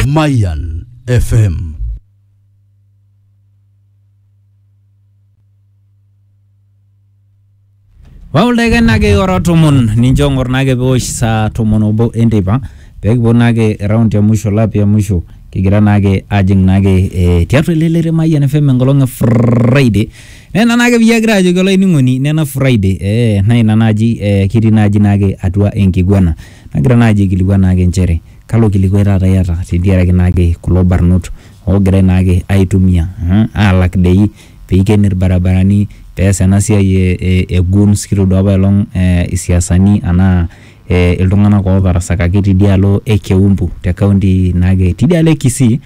Mayan FM. wauleke nake ora tomon nincho ng'or nake peosh saa tomon obo enteipa pekipuo nake round ya mwisho lap ya mwisho kigira nake ajing nake eh, tiatua ele lere Mayian FM enkolong e Friday nena nake piyie agira ajoki olainining'oni nena Friday eh, na ina naji eh, kitii naji nake atua enkiguana Nagira naaji aikilikuan naake nchere kalo kilikuai taata iyata tentiaraki naake kulo barnot oogirai naake aitumia aalak dei peiken ilbarabarani peas ena siai e guns kitoduaa apaelong isiasani anaa iltung'anak ootarasakaki teidialo e keumbu te kaunti naake teidialo e kisii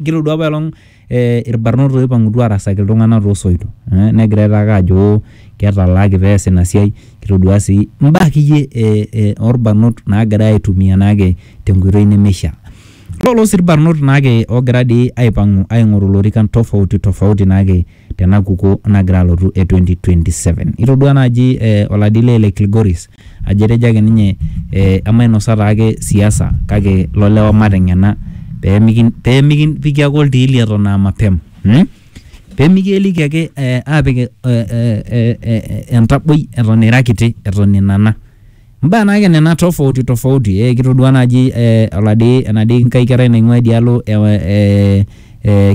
kitoduaa apaelong. eh, irbarnot oipang'utua arasaki iltung'anak toosoito eh, negirai taake ajo ketalaaki pees ina siai kitodua sii imbaa akeyie eh, eh, orbarnot naagirai aitumia naake tenkoitoi nemeishaa lolo sii irbarnot naake oogira dii aipang'u aing'oru ilorikan tofauti tofauti naake tena kukuo nagira alotu e 2027 itodua naaji eh, oladile le Kilgoris ajo etejo ake ninye emainosa taake siasa kake lolewa mateng'ena pemikipiki ake oltiili eton aa mapema pemikieliki ake apik entaboi eton ira kiti eton inana imbaa naake nena tofauti tofauti eh kitodua naaji eh oladi enadii nkae kerai naing'ua idialo eh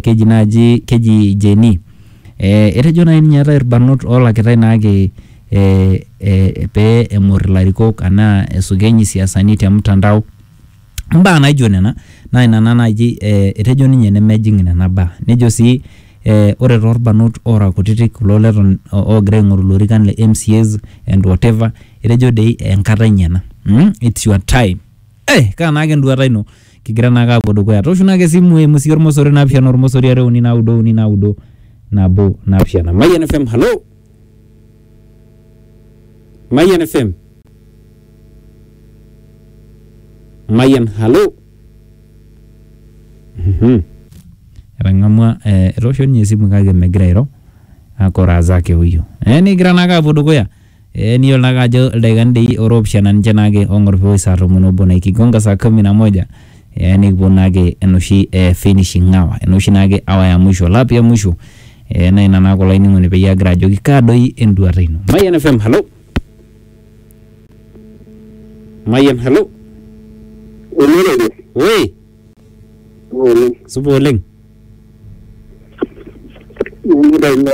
keji naaji keji Jane. Eh, etejo nai ninye eetae irbanot oolakitae naake eh, eh, pee eng'or ilarikok anaa esukeny isiasani te mtandao mbaa naijo nena naa ina naa naaji eh, etejo ninye nemejing nena baa nejo sii eh, ore toorbanot oora kutitik kulo leton oogira aing'oru ilorikan le MCAs and whatever etejo dei enkata enye ena mm, it's your time eh, kaa naake enduata ino? kigira naake aapuo dukuya. Tooshu naake esimu eimu sii ormosori naapishana ormosori are uni naudo uni naudo nabo naapishana. Mayian FM, halo. Mayian FM. Mayian, halo. Mhm. Etang'amua eh, etoosho ninye esimu kake megira airo. Akoraa zake huyu. Eh, nikigira naake aapuo dukuya. Ee niyiolo naake ajo ildaikani dei ora oopishana ninche naake oong'or peoi saa tomon obo naa ikigonga saa kumi na moja ee nikiponu naake enoshi ee finishing hour ena oshi naake hour ya mwisho lap ya mwisho ee naa ina naake olainining'oni peyie agira ajoki kaa doi enduata ino. Mayian FM, halo. Mayian, halo. Olorere. Woi, Oleng. supa oleng. Nanu Raila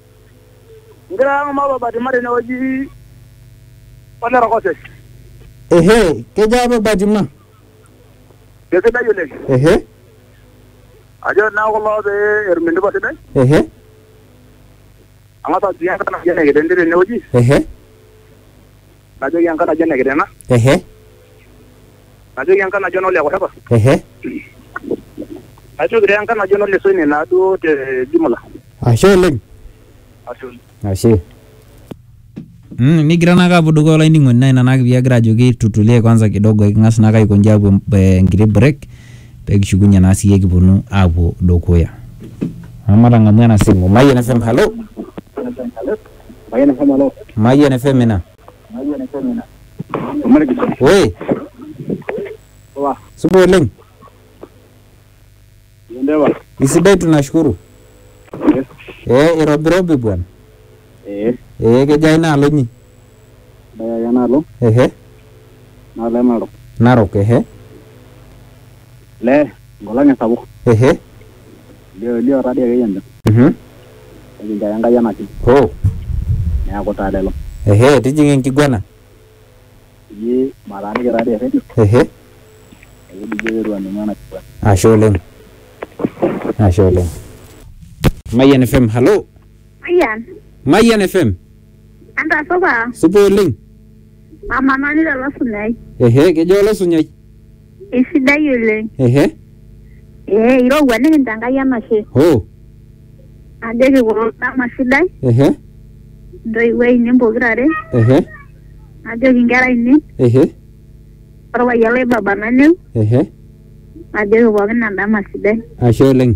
Egira ang' mapapa tima tene wueji ole Rokosek. Ehe, kejaa papa tima? Kesidai oleng. Ehe. Ajo naa kulo pee etum entupa sidai. Ehe. Ang'as ajoki enkai natii ene ketendi tene wueji. Ehe. najoki enkai najo ene kitena ehe najoki enkai najo enole kurepa ehe najoki taa enkai najo enole soine naaduo te jumla ashe oleng ashe oleng ashe Mm, nigira naake apuo dukuya olainining'oni naa ina naake piagira ajoki tutulie kwanza kidogo eking'as naake aikonji apuo em- eh, enkiti break pekishukunye naa siiyie kiponu apuo dukuya amu matang'amu ena simu mayian fm halo Mayian FM alo. Mayian FM ina. Oi. Supa oleng. Isidai tunashukuru. Ee irobirobi bwana. Ee kejaa inaalo inyi? Ehe. Narok ehe. Ehe. Elio elio tadi ake yie encham. Mhm. Nikinchoo ake Enkai enashe. Hoo. Neaku taa lelo. Ehe tijing'a enkiguana. Eji mataaniki tadi erredio. Ehe. Ekijoki ake eitu aning'u ena kiguana. Ashe oleng. Ashe oleng. Mayian FM, halo. Mayian. Mayian FM. Entasupa, Supa oleng. mama nanu lelo sunyai. Ehe, kejo olosunyai. Isidai oleng. Ehe, Ee, irowua nikincho Enkai enashe. hoo, Ajoki kulo dama sidai, ehe, intoiwuo ainei pokira are, ehe, ajoki inkera ainei, ehe, orpayian lai baba naneu, ehe. ajoki pookin endama sidai. Ashe oleng.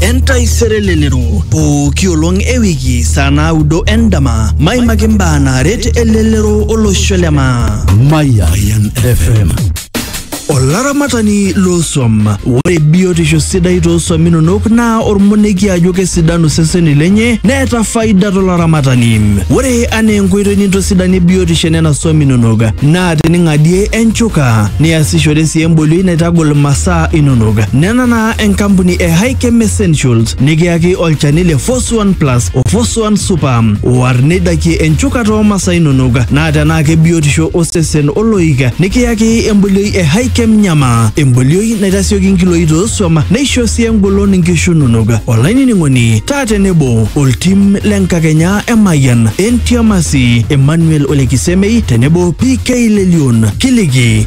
entaisere lelero pooki olong e wiki saa naudo endama maimaki mbaa naaret elelero olosho le maa Mayan FM. olaramatani loosuam ore biotisho sidai toosuam inonok naa ormonekie ajo kesidanu seseni lenye neeta faida tolaramatani ore anaa enkoitoi nintosidanie biotisho enena suam inonok naa tening'adie enchuka niasishore sii embolioi naitagol masaa inonok nena naa enkampuni e Hikem Essentials nikiyaki olchani le Foswan Plus o Foswan Super war neidakie enchukata oo masaa inonok naa tenaa kebiotisho osesen oloik nikiyaki embolioi e Hikem Nyama embolioi naitasioki nkiloi toosuam neisho sii engolon nkishu inonok olainining'oni taa tenebo oltim le nkakenya e Mayian Entiamasi Emmanuel Olekisemei tenebo PK Lelion kiliki